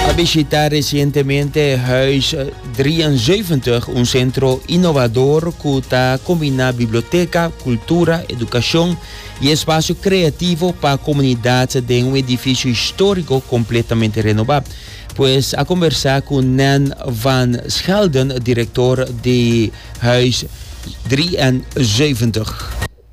a bishita resientemente Huis 73, un sentro inovador ku ta kombina biblioteka, kultura, edukashon i espasio kreativo pa komunidat den un edifisio históriko kompletamente renobá. Pues a kombersá ku Nan van Schelden, direktor di Huis 73.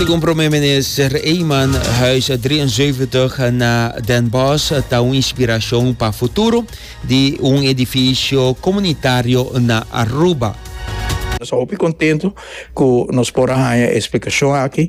Segun Prome Minister Eman, Huis 73 na Den Bosch ta un inspiracion pa futuro di un edificio comunitario na Aruba. Nos ta hopi contento cu nos por a haya e explicacion aki.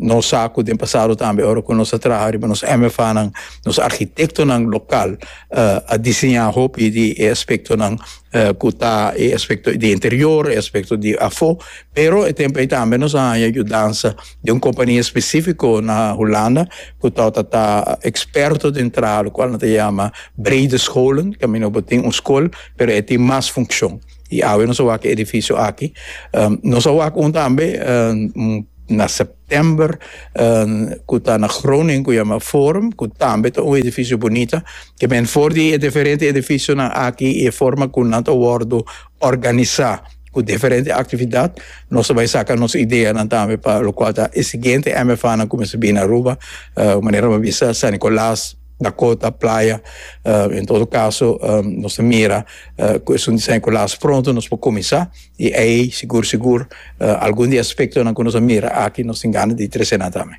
Nos sa cu den pasado tambe ora cu nos a traha riba nos MFAnan, nos architectonan local a diseña hopi di e aspectonan cu ta e aspecto di interior, e aspecto di afo, pero e tempo ey tambe nos a haya yudansa di un compania specifico na Hulanda cu torta ta experto den traha lo cual nan ta yama Breede Scholen, caminda bo tin un school pero e tin mas funcion. Y awe nos a wak e edificio aki. Nos a wak un tambe na september cu ta na Groningen cu yama Forum cu tambe ta un edificio bunita. Ke men for di e diferente edificionan aki y e forma cu nan ta wordo organisa cu diferente actividad nos a bay saca nos ideanan tambe pa locual ta e siguiente MFAnan cu mester bini Aruba manera bo a bisa San Nicolas, na kota, playa, en todo kaso nos ta mira ku esun diseño ku lasa pronto nos por kuminsá i ei sigur sigur algun di e aspektonan ku nos a mira aki nos tin gana di tresé nan tambe.